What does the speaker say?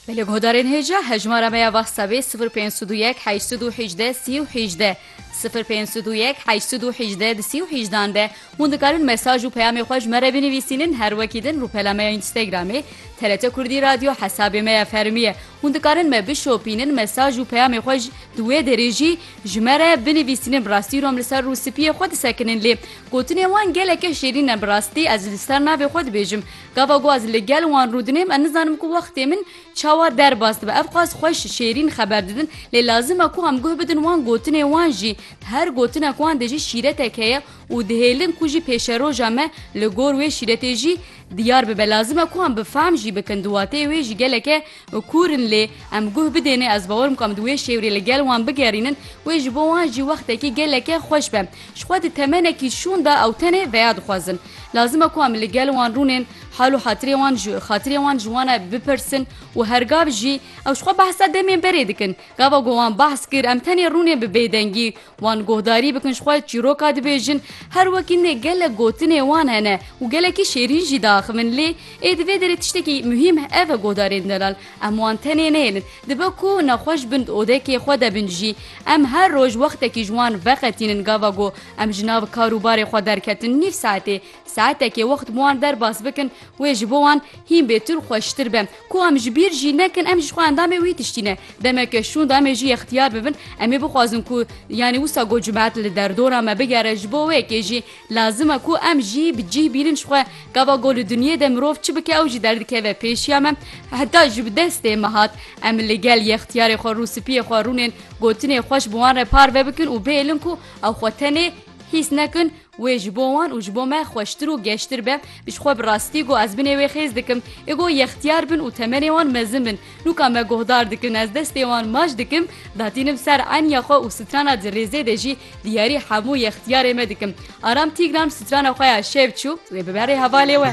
Belê guhdarên hêja hejmara me ya whatsapp ê 0501 818 318 0501 818 318 de hûn dikarin mesaj û peyamê xwe ji me re binivîsînin her wekî din rûpela me ya Instagramê TRT Kurdî Radyo hesabê me ya fermî ye hûn dikarin me bişopînin mesaj û peyamê xwe ji di wê derê jî ji me re binivîsînin bi rastî rom li ser rûspiyê xwe disekinin lê gotinên wan geleke şêrîn ne bi rastî ez li ser navê xwe dibêjim Gava ku ez li gel wan rûdinêm ez nizanim ku wextê min çawa derbas dibe. Ev qas xweş, şêrîn xeber didin lê lazim e ku em guh bidin wan gotinê wan jî. Di her gotinek wan de jî şîretek heye û dihêlin ku jî pêşeroja me li gor wê şîretê jî diyar bibe. Lazim e ku em bi fehm jî bikin di wateyê wê jî geleke û kûr in lê em guh bidêne ez bawer bikim em di wê şêwrê li gel wan bigerînin wê ji bo wan jî wextekî geleke xweş be ji xwe di temenekî şûn de ew tenê veya dixwazin lazim e ku em li gel wan rûnên hal û hatirê wan ji xatirê wan ji wan e bipirsin û her gav jî ew ji xwe behsa demên berê dikin gava ku wan behs kir em tenê rûnên bi bêdengî Wan guhdarî bikin ji xwe çîroka dibêjin, her wekî ne gelek gotinê wan hene û gelekî şêrîn jî diaxivin lê ê di vê derê tiştekî muhîm ev e guhdarên delal em wan tenê nehêlin dibe ku nexweş bin di odekê xwe de bin jî em her roj wextekî ji wan veqetînin gava ku em ji nav kar û barê xwe derketin nîv saetê Saetekê wext bi wan derbas bikin wê ji bo wan hîn bêtir û xweştir be. Ku em ji bîr jî nekin em jî ji xwe endamê wî tiştî ne. Demeke şûn da em ê jî yextiyar bibin em ê bixwazin ku yanî wisa ku cumhet li derdora me bigere ji bo wê yekê jî lazim e ku em jî bi cih bînin ji xwe gava ku li dinyê de mirov çi bike ew jî derdikeve pêşiya me heta ji destê me hat. Em li gel yextiyarê xwe rûspiyê xwe rûnên gotinê xweş bi wan re parve bikin û bihêlin ku ew xwe tenê hîs nekin. Wê ji bo wan û ji bo me xweştir û geştir be, ji xwe bi rastî got ez binê wê xêz dikim. Ê got yextiyar bin û temenê wan mezin bin. Nûka me guhdar dikin, ez destê wan maç dikim, datînim ser eniya xwe û strana di rêzê de jî diyarî hemû yextiyarê me dikim. Aram Tîgran strana xwe ya şev çû, wê bibe rê hevalê we.